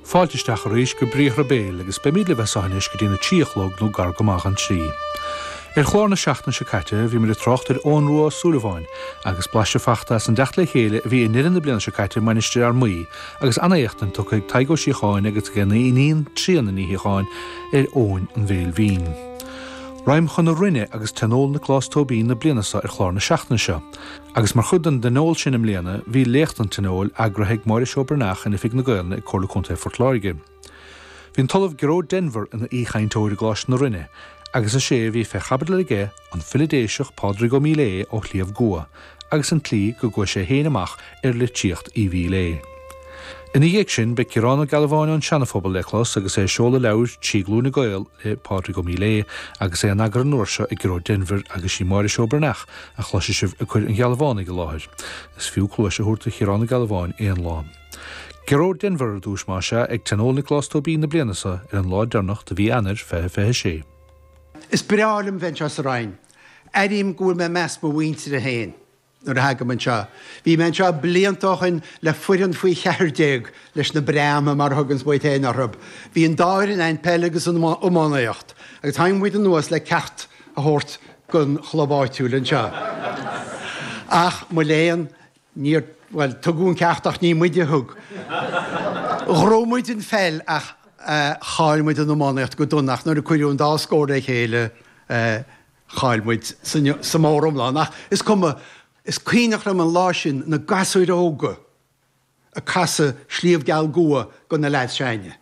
Fáilte isteach arís go Briathra Béil agus beimid libh as seo anois go dtí na trí a chlog nó gar go maith an trí. Ar chlár na seachtaine seo caite bhí muid ag trácht ar Eoghan Rua Ó Súilleabháin agus blaiseadh fachta as an dteacht le chéile a bhí i ndeireadh na bliana seo caite i Mainistir Fhear Maí agus an-éachtaint tugtha ag Tadhg Ó Síocháin agus ag a iníon Tríona Ní Shíocháin ar Eoghan an Bhéil Bhinn. Ragham chun na Rinne agus tionól Nioclás Tóibín na bliana seo ar chlár na seachtaine seo. Agus mar chuid den dtionól sin i mbliana, bhí Léacht an Tionóil, eagraithe ag Máire Seó Breathnach in Oifig na Gaolainne ag Comhairle Contae Phort Láirge. Bhí an tOllamh Gearóid Denvir ina aoichainteoir i gColáiste na Rinne, agus is é a bhí fé chaibidil aige an file Déiseach Pádraig Ó Míléadh ó Shliabh gCua, agus an tslí go gcuaigh sé féin amach ar litríocht Uí Mhíléadh. Ina dhiaidh sin, beidh Ciarán Ó Gealbháin ón Seanaphobal le clos agus é ag seoladh leabhair, Trí Glúine Gael, le Pádraig Ó Míléadh agus é in eagar an uair seo ag Gearóid Denvir agus sí Máire Seó Breathnach a chloisfidh sibh ag cuir an Ghealbhánaigh i láthair. Is fiú cluais a thabhairt do Chiarán Ó Gealbháin aon lá. Gearóid Denvir ar dtúis más ea, ag Tionól Nioclás Tóibín na bliana seo ar an lá deireanach de mhí Eanair, 20 26. Is breá liom bheith anseo sa Rinn. Airím go bhfuil mé i measc mo mhuintire féin. Nuair a thagaim anseo. Bhí mé anseo blianta ó shin le foireann faoi cheathar déag leis na Breathnaigh, mar a thuganns muid féin orthu. Bhí an dá fhoireann ann, peil agus an iománaíocht, agus tháinig muid anuas le ceacht a thabhairt don chlub áitiúil anseo. Ach, mo léan, níor, bhuel, tugadh an ceacht ach ní muid a thug. Ghnóthaigh muid an pheil ach chaill muid an iománaíocht go dona ach nuair a cuireadh an dá scór le chéile, eh, Chaill muid sa móriomlán, ach is cuma, is cuimhneach liom an lá sin, na gasúir óga ag casadh Sliabh Geal gCua do na leaids s'againne,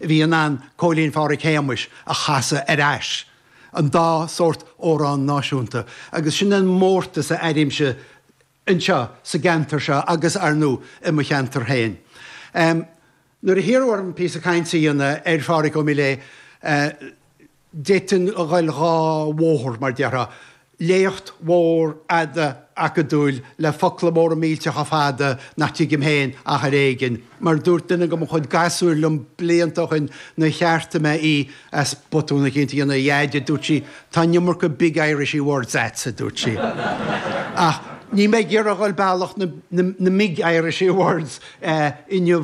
a bhí in ann Cóilín Phádraig Shéamais a chasadh ar ais, an dá sórt amhrán náisiúnta, agus sin an mórtas a airímse. anseo sa gceantar seo agus ar ndú i mo cheantar féin. Nuair a hiarradh orm píosa cainte a dhéanamh ar Phádraig Ó Míléadh, d'fhéadfainn ghoil dhá bhóthar, mar déarfá, léacht mhór fhada acadúil le focla móra millteacha fada nach dtuigim féin ach ar éigin, Mar a dúirt duine de mo chuid gasúir liom blianta ó shoin, nuair a cheartaigh mé í as botún eicínt, a Dhaid, a dúirt sí, tá an iomarca big Irishy words agatsa, a dúirt sí. Ach níl mé ag iarraidh dhul bealach na big Irishy words inniu.